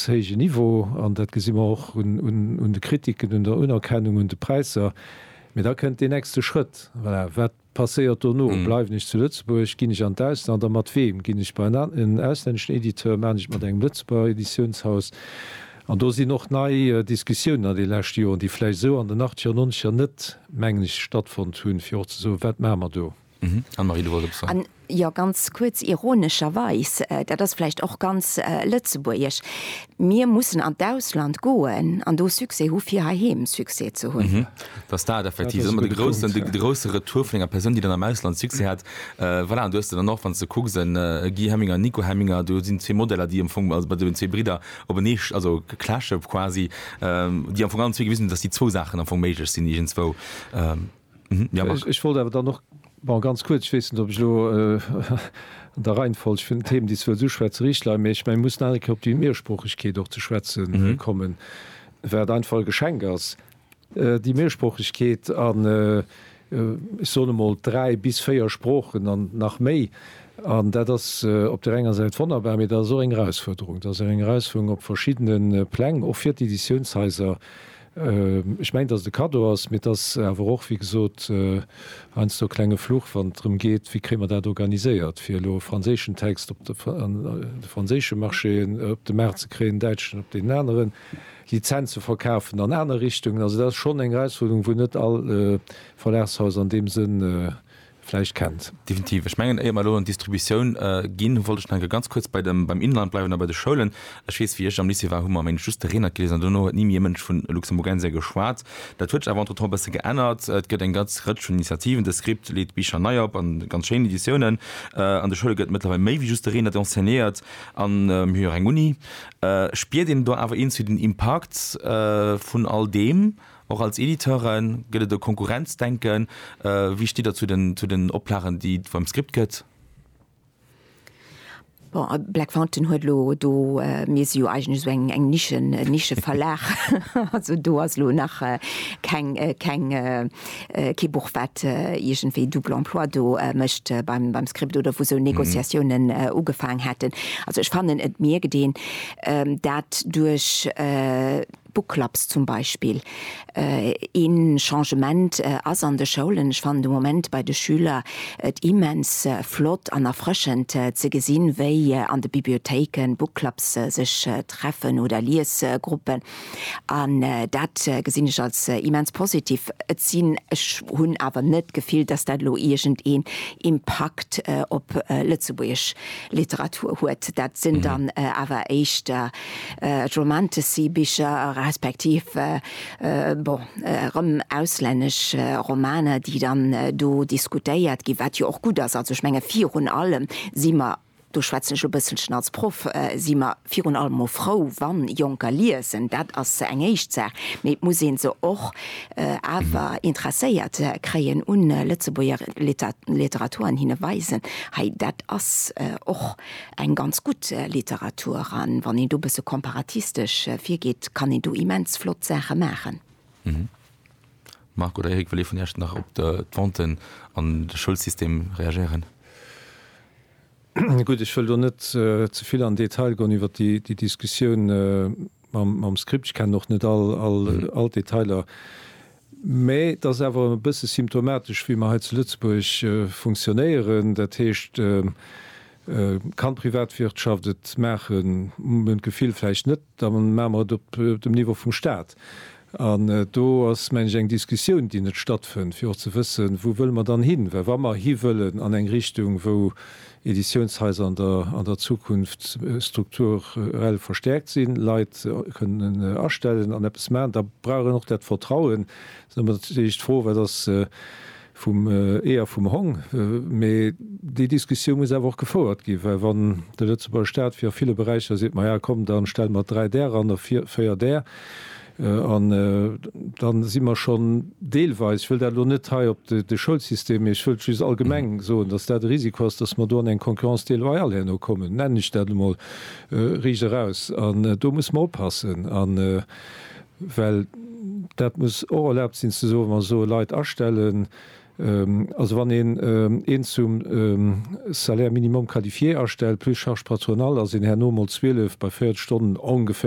héije Niveau, an dat gesi mer och un de Kritiken, un der Unerkennung, un de Präisser. Mee da kënnt deen nächste Schrëtt, Voilà, wat passéiert dono? Bleiwen ech zu Lëtzebuerg? Ginn ech an d'Ausland? A mat weem? Ginn ech bei en auslänneschen Editeur? Maachen ech et mat engem Lëtzebuerger Editiounshaus? An do sinn och nei Diskussiounen an de leschte Joren, déi vläicht esou an den Achtzeger, Nonzeger net, mengen ech, stattfonnt hunn, fir och ze soen, Wat maache mer do? Anne-Marie, du wolls eppes soen? Jo, ganz kuerz. Ironescherweis, dat ass vläicht och ganz lëtzebuergesch, mir mussen an d'Ausland goen an do Succès hu fir heiheem Succès ze hunn. Dat ass dat effektiv, dat ass ëmmer de groussen, de grousse Retour vun enger Persoun, déi dann am Ausland Succès hat. Voilà, an do hues de dann och, wann s de kucks, e Guy Hemminger, e Nico Hemminger, do sinn zwee Modeller, déi am Fong, also bei deenen zwee Bridder openee, also clashe quasi, déi am Fong allen zwee gewisen hunn, datt déi zwou Saachen am Fong méiglech sinn iergendzwou. Ech wollt awer dann och ganz kuerz, ech weess net, ob ech elo an der Reihenfolg vun den Themen, déi ech wëllt uschwätzen, richteg leien, mä ech mengen, mir mussen nach eng Kéier op déi Mehrsproochegkeet och ze schwätze kommen, wat einfach e Geschenk ass, déi Mehrsproochegkeet an, ech soen emol, dräi bis véier Sproochen an nach méi. An dat ass op där enger Säit wonnerbar, mä dat ass och eng Erausfuerderung. Dat ass eng Erausfuerderung op verschiddene Pläng, och fir d'Editiounshaiser, Ech mengen, dass et e Kaddo ass, mee et ass awer och, wéi gesot, heiansdo e klenge Fluch, wann et drëm geet, wéi kréie mer dat organiséiert, fir elo e franséischen Text op de franséische Marché, op de Maart ze kréien, en däitschen op deen aneren, Lizenz ze verkafen an aner Richtungen. Also dat ass schonn eng Erausfuerderung, wou net all Verlagshaus an deem Sënn vläicht kennt. Definitiv. Ech mengen, éier mer elo an d'Distributioun ginn, wollt ech nach eng Kéier ganz kuerz bei dem, beim Inhalt bleiwen a bei de Schoulen. Ech weess, wéi ech am Lycée war, hu mer, meng ech, just de Reenert geliesen an duerno huet ni méi e Mënsch vun Luxemburgensia geschwat. Dat huet sech awer entretemps e bësse geännert. Et gëtt eng ganz Rëtsch vun Initiativen, de Script leet Bicher nei op an ganz schéin Editiounen. An de Schoule gëtt mëttlerweil méi wéi just de Reenert enseignéiert an mir hu jo och eng Uni. Spiert een do awer iergendwéi den Impakt vun all deem? Och als Editeure gëtt et e Konkurrenzdenken. Wéi stitt Der zu den Oplagen, déi et beim Script gëtt? Bon, Black Fountain huet elo do, mir si jo eigentlech esou eng Nische, e Nischeverlag, also do ass elo nach keng, keng, kee Buch, wat iergendwéi double emploi do mécht beim Script oder wou esou Négociatiounen ugefaang hätten. Also ech fannen, et mierkt een dat duerch Book Clubs zum Beispill. Ee Changement ass an de Schoulen, ech fannen de Moment bei de Schüler et immens flott an erfrëschend ze gesinn, wéi an de Bibliothéike Book Clubs sech treffen oder Liesgruppen. An dat gesinn ech als immens positiv. Et sinn, ech hunn awer net d'Gefill, dass dat elo iergendeen Impakt op lëtzebuergesch Literatur huet. Dat sinn dann awer éischter Romantasy-Bicher, respektiv bon erëm auslännesch Romaner, déi dann do diskutéiert ginn, wat jo och gutt ass. Also ech menge virun allem si mer, do schwätzen ech e bësselchen als Proff, si mer virun allem emol frou, wann Jonker liesen. Dat ass eng éischt Saach. Mee et muss ee se och awer interesséiert kréien u Lëtzebuerger Literatur an hinne weisen, hei dat ass och Eng ganz gutt Literatur an wann een do bësse komparatistesch virgeet, kann een do immens flott Saache maachen. Marc oder Eric, wëll ee vun Iech nach op d'Venten an de Schoulsystem reagéieren? Gutt, ech wëll do net ze vill an Detail goen iwwer déi Diskussioun mam Script. Ech kennen och net all d'Detailer. Mä et ass awer e bësse symptomatesch, wéi mer hei zu Lëtzebuerg funktionéieren. Dat heescht, et kann d'Privatwirtschaft et maachen, hu mer d'Gefill, vläicht net, da maache mer et op dem Niveau vum Stat. An do ass, mengen ech, eng Diskussioun, déi net stattfënnt, fir och ze wëssen, wou wëlle mer dann hin. Well wa mer hiwëllen an eng Richtung, wou Editiounshaiser an der Zukunft strukturell verstäerkt sinn, Leit kënnen astellen an eppes maachen, da brauch een och dat Vertrauen. Et ass ëmmer natierlech d'Fro, wat ass vum Ee a vum Hong? Mee déi Diskussioun muss awer och gefouert ginn, well wann de Lëtzebuerger Staat, wéi a ville Beräicher, seet, Maja komm, da stelle mer dräi där eran a véier där, An da si mer schonn deelweis, ech wëll dat elo net hei op de Schoulsystem, mee ech wëllt just allgemeng soen, dass dat e Risiko ass, dass mer do an eng Concurrence déloyale herno kommen, nennen ech dat emol riicht eraus. An do musse mer oppassen, well dat muss och erlaabt sinn ze soen, wa mer soe Leit astellen, also wann een een zum Salaire minimum qualifié astellt plus charges patronales, ass een herno emol 12 bei 40 Stonnen ongeféier